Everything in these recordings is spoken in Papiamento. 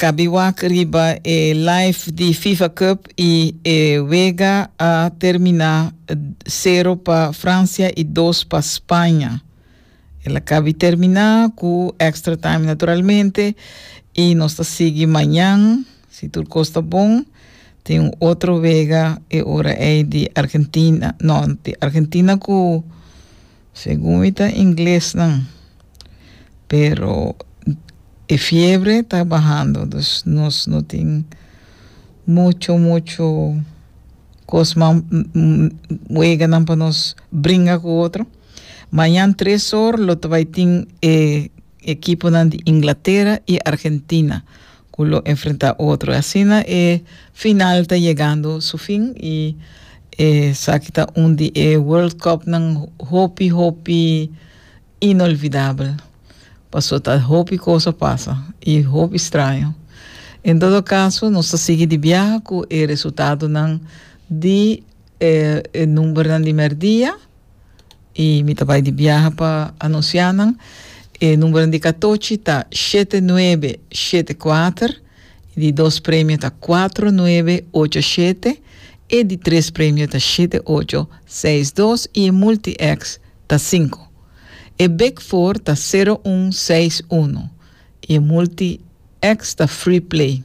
Kabi wak riba e live di Fifa Cup y e wega a termina sero pa Francia y dos pa Spaña. El a kabi termina cu extra time naturalmente y nos ta sigui mañan, si tur cos ta bon, tin un otro wega e ora ey di Argentina, no, di Argentina cu. Segun mi ta inglesnan pero e fiebre ta bahando dus nos no tin mucho mucho cosnan weganan pa nos bringa cu otro mañan tres or lo ta bay tin e Ekiponan di Inglatera i Argentina ku lo enfrentá otro. Asina e final ta yegando su fin i esaki ta un di e World Cupnan hopi hopi inolvidabel. Paso ta hopi kos a pasa i hopi straño. En todo kaso nos ta sigui di biaha ku e resultadonan di e numbernan di mèrdia y mi ta bay di biaha pa anuncia nan. E numero di catochi ta shete nuebe shete kuater, y di dos premio ta cuatro nuebe ocho shete, e di tres premio ta shete ocho seis dos y e multi X ta cinco. E big four ta cero un seis uno. I e multi X ta free play.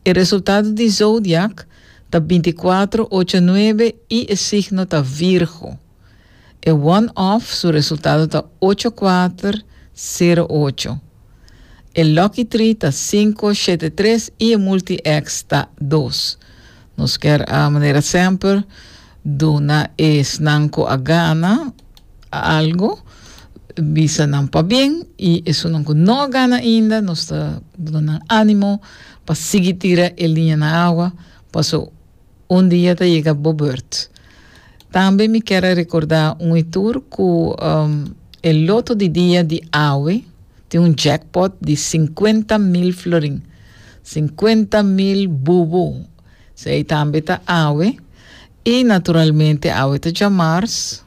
E resultado di zodiak ta binti kuatro ocho nuebe i e signo ta Virgo. E one off su resultado ta ocho kuater sero ocho. E lucky tree ta sinku shete tres i e multi X ta dos. Nos ker a manera semper. Duna esnan cu a gana algo, bisa nan pabien, y esunnan cu no a gana ainda, nos ta duna nan animo pa sigui tira e liña na awa, paso un dia ta yega bo beurt. Tambe mi kier a recorda un e tur cu e loto di dia di awe tin un jackpot di cincuenta mil florin, cincuenta mil bubu. S'ei tambe ta awe, i naturalmente awe ta djamars.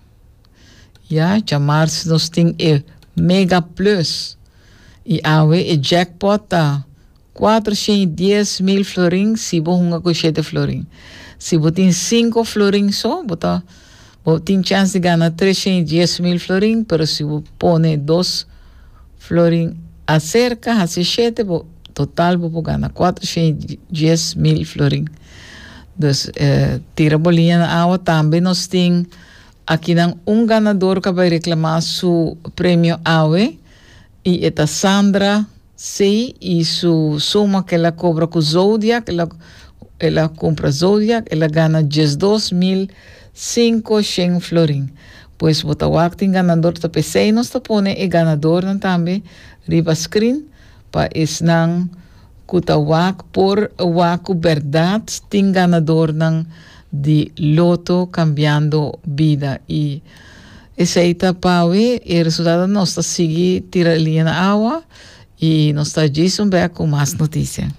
Ya, djamars nos tin e Mega Plus, i awe e jackpot ta kuater shen i dies mil florin si bo hunga ku shete florin. Si bo tin sinku florin so, bo ta. Bo tin chans di gana tresha i dies mil florin, pero si bo pone dos florin aserka, hasi shete, bo total bo por gana kuatrusha i dies mil florin. Dus tira bo liña na awa. Tambe nos tin akinan un ganador ku a bai reklamá su premio awe i e ta Sandra. Sí, i su suma ke el a kobra ku Zodiak, el a el a kumpra Zodiak, el a gana diesdos mil sinku shen florin. Pues bo ta wak tin ganador ta p'esei nos ta pone e ganadornan tambe riba screen pa esnan ku ta wak por wak ku bèrdat tin ganadornan di loto Cambiando Vida i Esei ta pawe e resultado nos ta sigui tira e liña na awa y nos ta djis un bek cu mas noticia.